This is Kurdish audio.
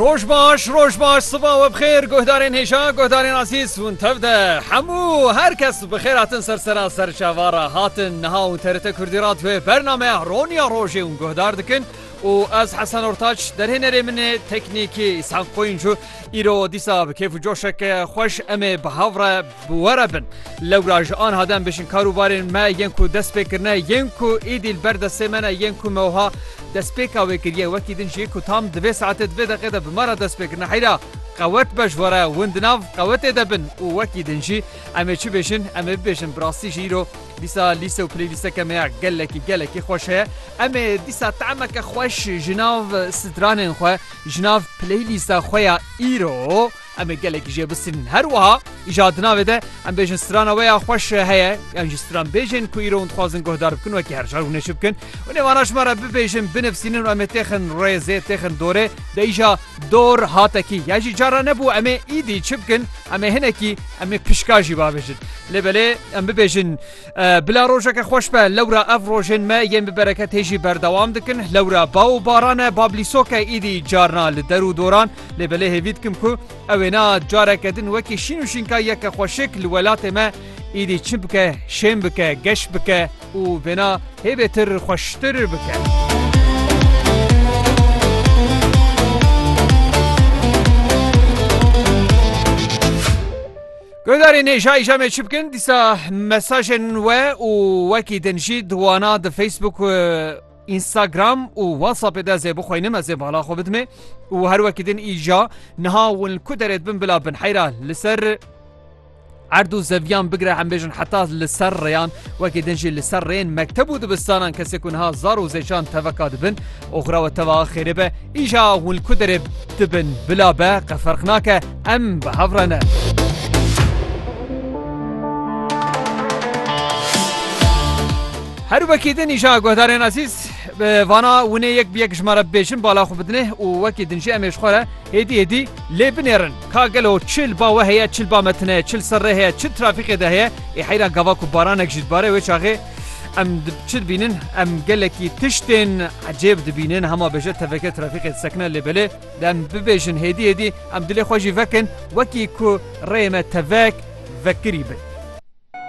Roj baş, roj baş, siva we bixêr, guhdarên hêja, guhdarên azîz hûn tev de. Hemû her kes bi xêr hatin ser sera ser çavara hatin. Niha û TRT Kurdî ra divê bernameya Roniya Rojê ûn guhdar dikin û ez Hesen Ortaç derhênerê min ê teknîkî Îshak Qoyuncu îro dîsa bi kêf û coşeke xweş em ê bi hev re Bi we re bin. Lewra ji anha dem bijin kar û barên me yên ku dest pê kirine yên ku êdî li ber destê me ne yên ku me wiha destpêka wê kiriye wekî din jî ku tam di vê saetê di vê deqê de bi me re dest pê kirine heyra qewet be ji we re win di nav qewetê de bin û wekî din jî em ê çi bêjin em ê bibêjin bi rastî jî îro dîsa lîse û playlîsteke me ya gelekî gelekî xweş heye em ê dîsa tahemeke xweş ji nav stranên xwe ji nav playlîsta xwe ya îro Em ê gelekî jê bisînin. Her wiha îja di navê de em bêjin strana we ya xweş heye yan jî stranbêjên ku îro hûn dixwazin guhdar bikin wekî her car hûn ê çi bikin û nêvana ji me re bibêjin binivîsînin û em ê têxin rêzê têxin dorê de îja dor hatekî yan jî cara nebû em ê îdî çi bikin em ê hinekî em ê pişka jî babêjin lê belê em bibêjin bila rojeke xweş be lewra ev rojên me yên bi bereket hê jî berdewam dikin lewra baw û barane bablîsoke îdî carna li der û doran Lê belê hêvî dikim ku ew ê na careke din wekî şîn û şînka yeke xweşik li welatê me êdî çi bike, şên bike, geş bike û vêna hê bêtir xweştir bike. Guhdarê nêjayî jamê çi bikin dîsa mesajên we û wekî din jî di wana di Facebook Instagram û WhatsAppê de zê bixweynim ez ê bala xwe bidimê û her wekî din îja niha win li ku derê dibin bila bin heyra li ser erd û zeviyan bigire em bêjin heta li ser rêyan wekî din jî li ser rêyên mekteb û dibistanan kesê ku niha zar û zêçan teveka dibin oxra we teva xêrê be îja hûn li ku derê dibin bila be qeferq nake em bi hev re ne. Her wekî din îja guhdarên ezîz bi vana winê yek bi yek ji me re bibêjin bala xwe bidinê û wekî din jî em ê ji xwe re hêdî hêdî lê binêrin ka gelo çi li ba we heye çi li ba me tune ye çi li ser rê heye çi li trafîqê de heye ê heyran gava ku baranek jî dibare wê çaxê em çi dibînin em gelekî tiştên ecêb dibînin hema bêje teveke trafîqê disekine lê belê dem bibêjin hêdî hêdî em dilê xwe jî vekin wekî ku rê me tevek vekirî bin.